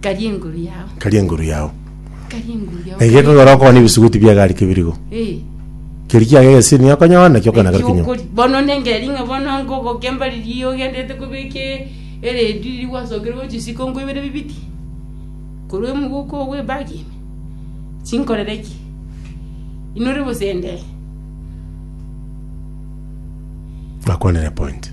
Karia enguru yao. karia enguru yao. Karia enguru yao. Na erio ekagora okogana ebisuguti bi'egari kebirigo. Eh. Keria kiago egesini okonyora nakio okogenda Eki kekinywa. okori- Bono nengeri ng'a bono nkogokemba riria ogendete kobeka e- eredio riria gwasokire gochia isiko nkoibere bibiti? Korwa emogoka oo bw'ebagi ime? Chinkorere ki? Inore bosende? Nakwanire point.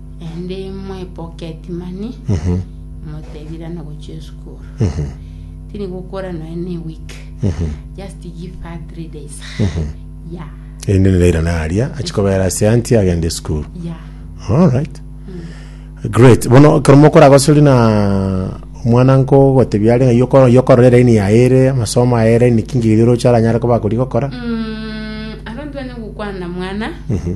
Naende mwepoketi mani Mhm. motebirana gochia esukuru Mhm. tiri gokora noe ne week Mhm. just give her three days Mhm. ya Erinde nerairane aria achikobeera ase anti agende esukuru. ya Alright. Great. Bono ekero mokoragosori na omwana nko gotebia are ng'ai oko- yokorora eraini yaye ere amasomo aye ere niki nki oroche aranyare koba akori gokora. Mm, aro ntwenerwe gokwana na mwana Mhm.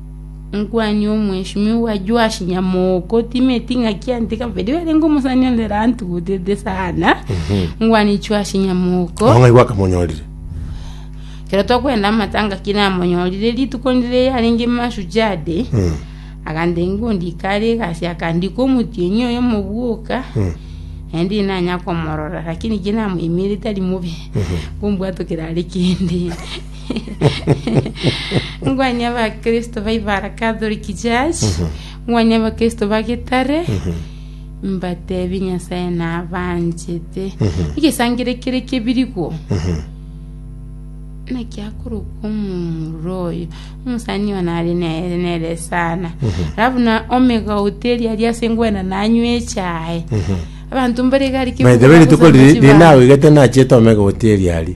Omokwaani omweshimiwa Joashi nyamoko timeti ng'a kiaanete kabere arenge omosani onde rantugutete sana omokwaani Joashi nyamoko Ao ng'ai gwakamonyorire? ekero tokwenda amatanga ki namonyorire rituko ndire yarenge mashujaa day Mm. agantenga ondike are egasi akandika omotienyi oyo omobwoka naende ndire nanya komorora lakini ki namoimerete ari mobe ngombwatokera are kende Ngwanye Abakristo ba Ibara Catholic Church, ngwanye Abakristo ba Gitare, mbatebie Nyasae nabanchete. Egesangera ekere kebirigwo, naki akoroka omomura oyo, omosani oyo nare nere nere sana. Alafu na omega hoteli aria ase ngwena nanywa echae. Abanto mbare gari By the way, rituko riri riri naoigete nachete omega hoteli aria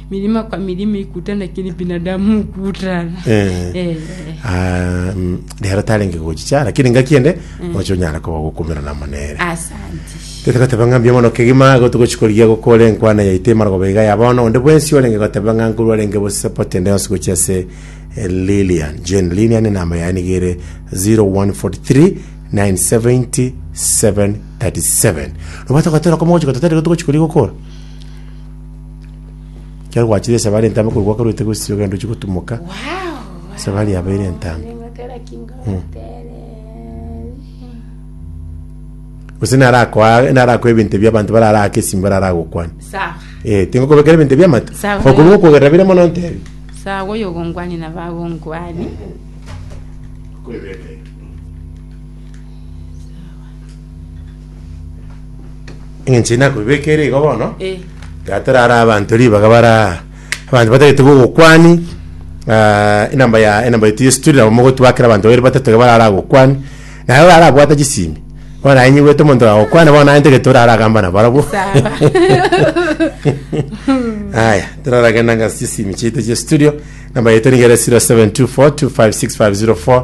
Mirima kwa mirima ikutana kiri binadamu ukutana. Eh. Eh. Ah, mm, rero tarenge gochicha lakini ngaki ende oche onyara koba gokumera namo nere Asante. tete goteba ng'a mbuya mono kegima gotu gochikorigia gokora enkwana yaito emara goba iga ya bono onde bwensi orenge goteba ng'a nkorwa arenge bosapoti ende yonsi gochia ase eh, Lilian Jane Lilian enamba yaye niga ere 0143 970 737 nobwate gotora komo gochia gototarire gotu gochikorigia gokora Ekero gwachire esabari entambe korwa gwakorwete gosisi ogenda ochie gotumoka esabari yabo ere entambe. Gose narakoa narakoa ebinto ebio abanto barara ake esimo barara gokwana. Sawa. Eh, tingokobekera ebinto ebiamato. Sawa. Okorwa okogerera bire mono ntebi. Sawa oyo ogongwani nabo agongwani. Eng'encho eye nakoibeka ere igo bono, Eh. iga torare abanto ribaga bare aa, abanto batagete bogokwani enamba ya enamba yaito ya estudio nabo mogotwakera abanto babere batato iga barare agokwani, naye orare abwate chisimi, bono aye nyibuete omonto agokwana bono naye ntagete orare agamba nabarabwo. Sawa. Aya, toraragenda ngase chisimi chiaito chia estudio, enamba yaito niga ere 0724256504.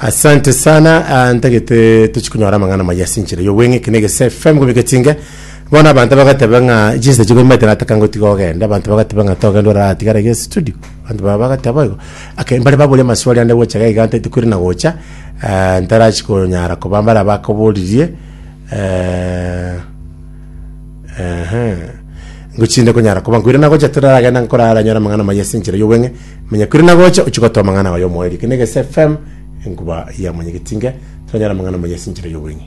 Asante sana ah, ntagete tochikunyora amang'ana maya ase enchera y'obweng'e ekine gese FM gobika chinge bono abanto bagateba ng'a chinsa chigomete nataka ngotiga ogende abanto bagateba ng'a togende oratigare ge studio abanto baba bagateba igo ake mbare baboria amaswali ande gocha gaiga ntaiti kweri na gocha ah, ntarachi konyara koba mbare abakoboririe eh, ehe ngochinde konyara koba nkwire nagocha toraragenda nkorara nyora amang'ana maya ase enchera y'obweng'e Manya kwire na gocha ochie gotoa amang'ana aye omoerio. Eke ne Gesi FM, enkuba ya mwanyagetinge. Toranyare amang'ana maya ase enchera y'obong'e.